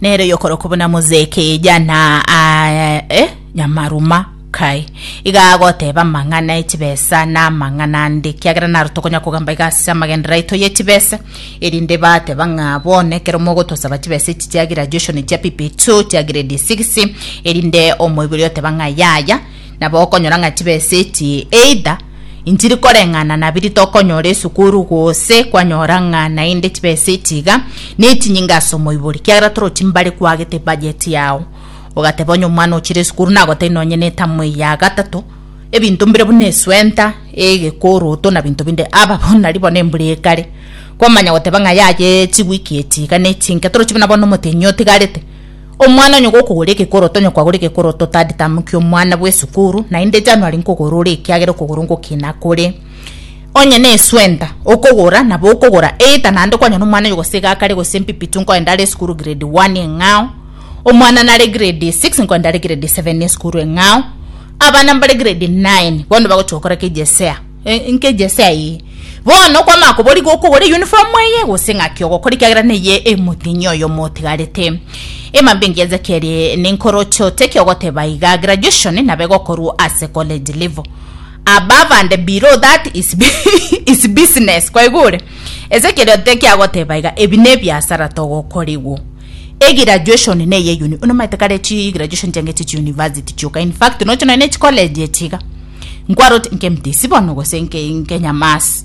nere yokorokwa buna mozekeja na aa- eh, nyamaruma kai iga agoteba amang'ana echibesa na amang'ana ande kiagera naro tokonya kogamba iga ase amagendero aito yechibesa erinde bateba ng'a bono ekero mogotosaba chibesa echi chiagira joshon chia pipi 2 chiagira edi 6 erinde omoibori oteba ng'a yaya Nabo okonyora ng'a chibeseti either inchiri koreng'ana na biri tokonyora esukuru gose kwanyora ng'a naende chibeseti iga nechinyinga ase omoibori kiagera toro chimbare kwagete budget yao ogateba onye omwana ochire esukuru nagotebia nonye ne etamu eye ya gatato ebinto mbire buna eswenta egekoroto na binto binde aba bono nari bono embura ekare kwamanya goteba ng'a yaye chiwiki echi iga nechinke torochi buna bono omotenyi otigarete Omwana onye gokogora egekoroto, onye kwagora egekoroto third term kia omwana bwa esukuru, naende January nkogora ore ekiagera okogora ngokina kore. Onye na eswenta okogora nabo okogora either naende kwanyora omwana oyo gose egakare gose empipitu nkoenda are esukuru grade one eng'ao, omwana nare grade six nkoenda are grade seven esukuru eng'ao, abana mbare grade nine bono nibagochia gokora kejea esea. Eh, inke Jesse aye. Bono kwama kobori gokogora uniform eye gose ng'aki ogokora ekiagera neye emotinyi oyo motigarete. Emambe engiya Ezekiel nenkoroche oteke ogoteba iga graduation nabe gokorwa ase college level. Above and below that is, is business. Kwaigure? Ezekiel oteke agoteba iga ebi nebiasara togokorigwo. E graduation neye uni. Unomanyete kare chi graduation chiange chichi university chioka. In fact nocho nonya chi college echiga. nkwaroti nke mtisi bono gose nke nke nyamasi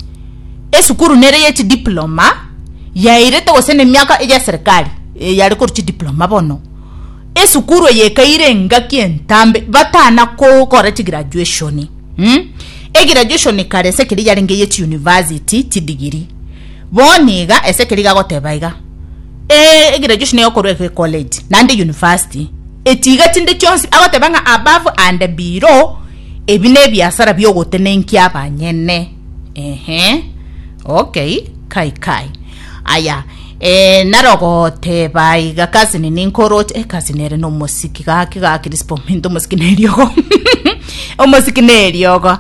esukuru nere ye chidiploma yairete gose ne miaka eya serikali eh, yare koru chidiploma bono esukuru eye ekaire engaki entambe batana kokora chigraduation hmm? egraduation kare ase ekeri yarenge ye chiuniversity chidigiri bono iga ase ekeri gagoteba iga E graduation eye okorwa eke college naende university etiga chinde chionsi agoteba ng'a above and below ebi ne ebiasara bia ogotenenkia abanyene ehe okay kai kai aya eh, naro goteba iga cousin ninkoroche eh, cousin ere na omosiki gaki gaki respomento omosiki neriogo omosiki neriogo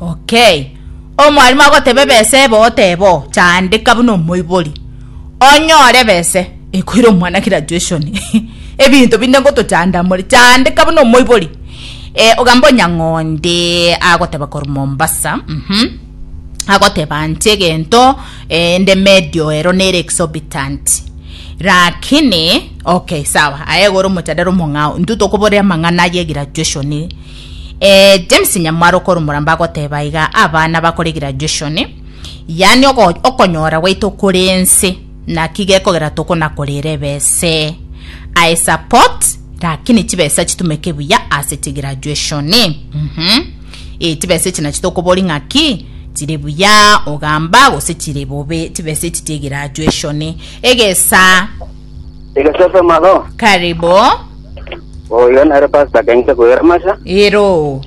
Okay. Omwalimu agoteba ebese ebe oteba oo chandika buna omoibori. Onyore ebese ekoira omwana graduation. Ebinto binde ngotochanda more. Chandika buna omoibori. Eh, ogamba onyang'onde agoteba koru Mombasa. Mhm. Agoteba nche egento eh, nde medio ero nere exorbitant. Lakini okay sawa. Aye gore omochandere omong'ao. Ntu tokoborera amang'ana aye graduation. Eh, James Nyamwaro korwa Muramba agoteba iga abana bakore graduation, yaani ogo, okonyora gwaito kore ense naki gekogera tokona korera ebese. I support lakini chibesa chitumeke buya ase chi graduation. Mhm. Eh, chibesa echi nachi tokobori ng'aki chire buya ogamba gose chire bobe chibesa echi chi graduation egesa Egesesema lo. Karibu. Oyo nere pastor Keng'ite Koyora Masha. Ero.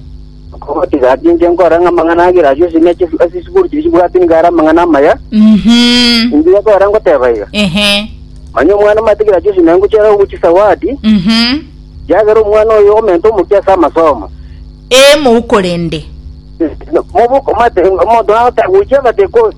Kogotiga ati inche nkora ng'a amang'ana a Girachi ase ne chisu- ase chisukuru chiria chibwati nigo are amang'ana amaya. Mhm. Inche nkora ngoteba iga. Ehe. Manya omwana omate Girachi ase naye ngochiera ogochi zawadi. Mhm. Yagera omwana oyo omente omokia ase amasomo. Ee moukorende. Mobuko mate omonto nagoteba gochia bate kosi.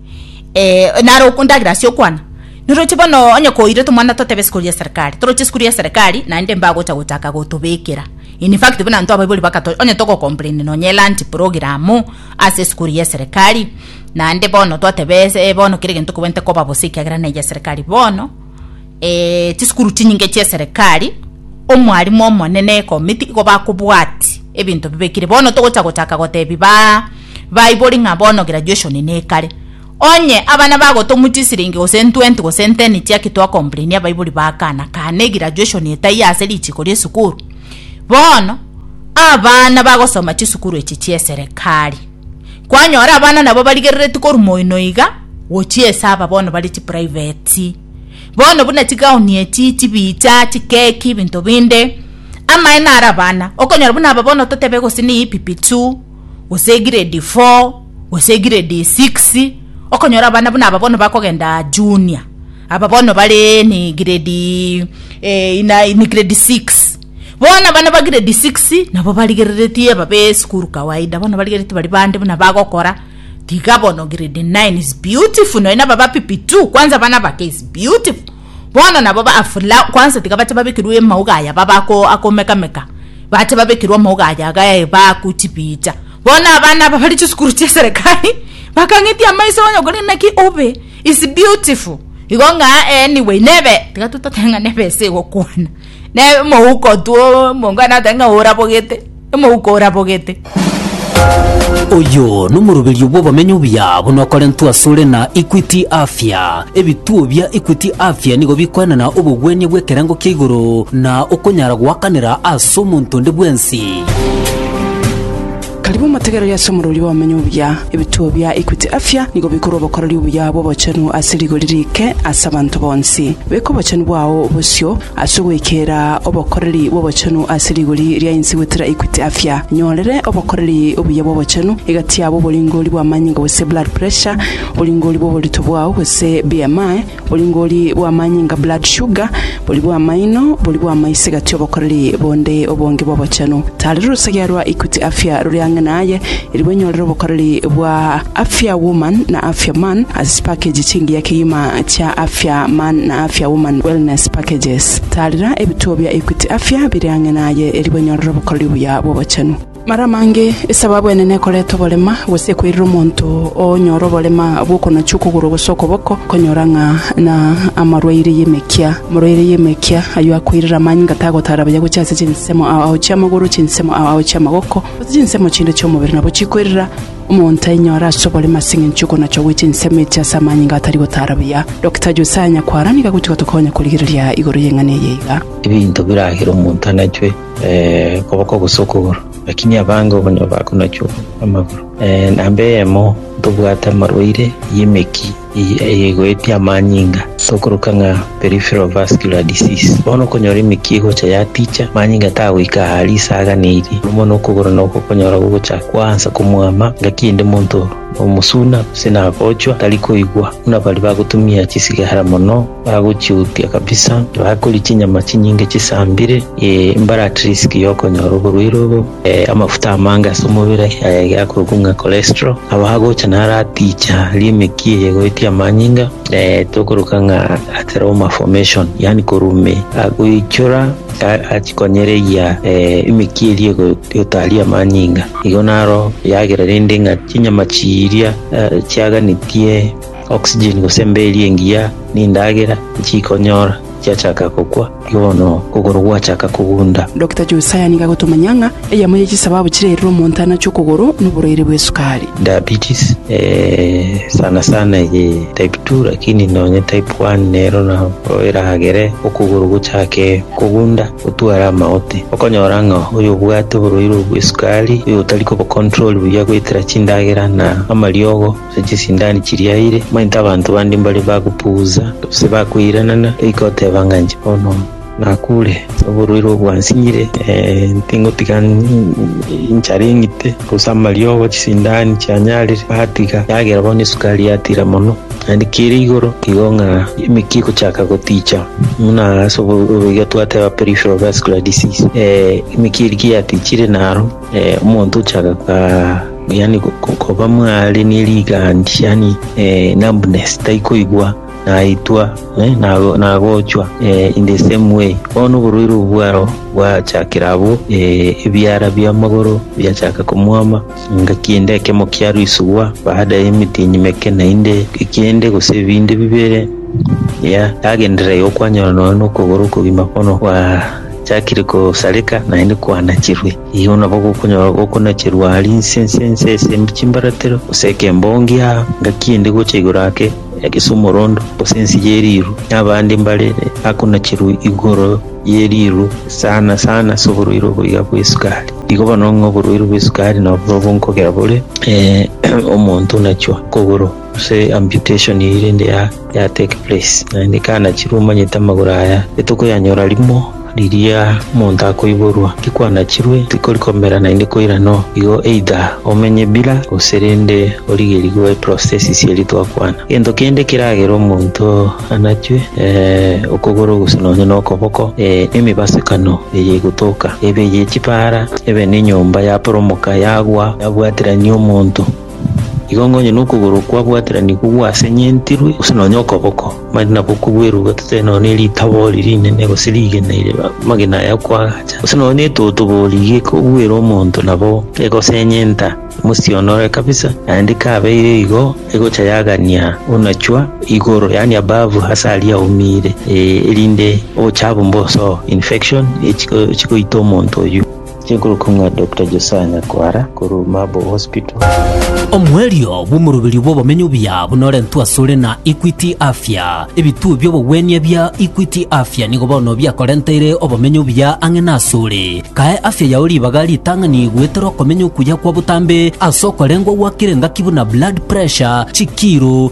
eh, naro ndagera ase okwana Noroche bono onye koire tomwana totebe esukuru ya serikali toroche esukuru ya serikali naende mbagocha gotaka gotobekera in fact buna ntwa baibori bakato onye togo complain nonye lunch program ase esukuru ya serikali naende bono twatebe ase bono kere gento kobente koba bose ekiagera neye ya serikali bono eh, chisukuru chinyinge chieserikari omwarimu omonene ekomiti igo bakobwati ebinto bibekire bono togocha gochaka gotebi ba baibori ng'a bono graduation nekare onye abana bagotomu chisiringi gose ntwenti gose nteni chiaki twakomplaini abaibori bakana kana egraduation etaiyo ase richiko riesukuru bono abana bagosoma chisukuru echi chieserikari Kwanyora abana nabo barigerereti korwa moino iga gochia ase aba bono bare chiprivate. Bono buna chigauni echi, chibicha, chikeki, ebinto binde. Amaene are abana, okonyora buna aba bono totebe gose ne PP2, gose egrade four, gose egrade six, okonyora abana buna aba bono bakogenda junior, aba bono bare ne egrade eh ina in grade six. Bono abana ba grade six nabo barigereretie babe esukuru kawaida bono barigereretie bari bande buna bagokora tiga bono grade nine is beautiful nonya naba bapipi tu kwanza abana bake is beautiful bono nabo ba afula kwanza tiga bache babekirwe emauga aya baba ako- akomekameka bache babekirwe amauga aya gae baku chibicha bono abana aba bari chisukuru chia eserekari bakang'etie amaiso onye okore naki obe is beautiful igo ng'a anyway nebe tiga totatebe ng'a nebe ase egokwana Na omouko otwo omongwana oteba ng'a orabogete, omouko orabogete. Oyo nomoroberio bw'obomenyo obuya buna okorentwe asore na Equity Afya. Ebituo bia Equity Afya nigo bikoenana obogwenia bw'ekerengo kia igoro na okonyara goakanera ase omonto onde bwensi. Karibu motegereri ase omorori bw'obomenyo obuya. Ebituo bia Equity Afya nigo bikorwa obokoreri obuya bw'obochenu ase rigori riike ase abanto bonsi. Beka obochenu bwao bosio ase ogoikera obokoreri bw'obochenu ase rigori ria inse goetera Equity Afya. Nyorere obokoreri obuya bw'obochenu egati yabo oboringori bw'amanyinga gose blood pressure, oboringori bw'oborito bwao gose BMI, Boringori bw'amanyinga, blood sugar, bori bw'amaino, bori bw'amaiso egati obokoreri bonde obonge bw'obochenu. Tari rorosegea rwa Equity Afya rore ang'e naye, eri bwenyorere obokoreri bwa Afya Woman na Afya Man ase chipakeji chingiya kegima chia Afya Man na Afya Woman Wellness Packages. Taarera ebituo bia Equity Afya bire ang'e naye eri bwenyorere obokoreri obuya bw'obochenu. Mara mange esababu enene ekoreta oborema, gose ekoirera omonto onyore oborema bw'okonachi okogoro gose okoboko, konyora ng'a na amarwaire y'emekia. Amarwaire y'emekia ayio akoirera amanyinga tagotaara buya gochia ase chinsemo ao chi'amagoro, chinsemo ao chi'amagoko, gose chinsemo chinde chi'omobere nabo chikoirera omonto ainyore ase oborema ase engencho y'okonachwa gwe chinsemo echi ase amanyinga atari gotaara buya. Dokita Josiah Nyakwara nigo agotuga tokonya korigereria igoro y'eng'ana eye iga. Ebinto biragera omonto anachwe. okoboko gose okogoro, lakini abange onye bakonachwa amagoro, na mbe eyemo ntobwate amarwaire y'emeki eye egoetie amanyinga tokoroka ng'a peripheral vascular disease. Bono okonyora emeki egocha yaticha, amanyinga tagoika aa Lisa aganeirie, amo nokogoro na okonyora gogocha kwaansa komwama, ngaki ende monto nomosuna gose nagochwa tari koigwa, buna baria bagotumia chisigara mono. Bagochiutia kabisa, bakoria chinyama chinyinge chisambire, ee, mbare at risk y'okonyora oborwaire obo, ee, amafuta amange ase omobere, aya iga akorokwa ng'a cholesterol, nabo agocha naraticha limit eye goetia amanyinga, ee, tokoroka ng'a atheroma formation, yaani korumi agoichora a- achikonyereria ee, emeki eria ego- egotaria amanyinga. Igo naro yagera rende ng'a chinyama chiria ee, chiaganitie Oxygen gose emberi engiya nindagera echikonyora chiachaka gokwa, igo bono okogoro gwachaka kogunda. Dokita Josiah nigo agotomanyia ng'a eyemo ye chisababu chirairire omonto anachwe okogoro noborwaire bw'esukari. Diabetes eh, sana sana eye type two, lakini nonye type one nero nao eragere okogoro gochake kogunda otware amagote. Okonyora ng'a oyobwate oborwaire obwo bw'esukari, oyo otari kobocontrol buya goetera chindagera na amariogo, Ase chisindani chiria aeire, omanyete abanto bande mbare bagopugusa, gose bakoiranana, toika oteba ng'a inche bono nakuure ase oborwaire obwa nsinyire, tingotiga inchara eng'ite, gose amariogo, chisindani chianyarire, natiga, ekiagera bono esukari yatira mono, naende kere igoro igo ng'a emeki egochaka goticha, buna ase oboigo twateba peripheral vascular disease, emeki eria ki yatichire naro. Eh, omonto ochaka ka yani ko- ko- koba mware ne rigandi yani eh, numbness taikoigwa naitwa eh, nago- nagochwa eh, in the same way bono oborwaire obo bwaro bwachakera abo eh, ebiara biamagoro biachaka komwama engaki ende ekemo kiarusigwa baada ya emitinyi meke naende ekiende gose ebinde bibere ya yagenderera yokwanyora nonya nokogoro okogima bono kwa Chakire kosareka, naende kwanachirwe. Igo nabo gokonyora gokonacherwa aria inse inse inse ase chimbaratero, gose ekembongi aa, ngaki ende gocha igoro ake, gese omorondo, gose ense ye riiru, na abande mbare akonacherwa igoro ye riiru sana sana ase oborwaire obo iga bwe esukari. Igo bono ng'a oborwaire bwe esukari nobwo bonkogera bore omonto onachwa kogoro. Gose amputation eria rende ya ya take place naende kanachirwe omanyete amagoro aya etokoyanyora rimo riria omonto akoiborwa tikwanachirwe tikori komera naende koira no igo either omenye bila gose rende origerigwe prosthesis eria twakwana gento kende keragere omonto anachwe eh, okogoro gose nonye na okoboko eh, emibasekano eye egotoka ebe ye chipara ebe ne enyomba yaporomoka yagwa yabwaterania omonto Igo ngonye nokogoro okwabwatiranigwe gwasenyentirwe, gose nonya okoboko, mari nabo kogwerugwa totebe nonya neritabori rinene gose rigena ire amagena aye akoagacha, gose nonya netotobori iga ekogwera omonto nabo egosenyenta mosie one ore kabisa, naende kabeire igo egocha yagania onachwa igoro, yaani above, ase aria aumire, ee, erinde obochafu mbosoo, infection, echi echigoita omonto oyio. Chinkuru-kong'a Doctor Josiah Nyakwara korwa Marble Hospital. Omoerio bw'omoroberio bw'obomenyo obuya bunorentwe asore na Equity Afya. Ebituo bi'obogwenia bia Equity Afya nigo bono biakorenteire obomenyo obuya ang'e nasore. Kae afya yao ribaga ritang'ani goetera okomenya okuya kwa botambe ase okorengwa gwakire ngaki buna blood pressure, chikiro,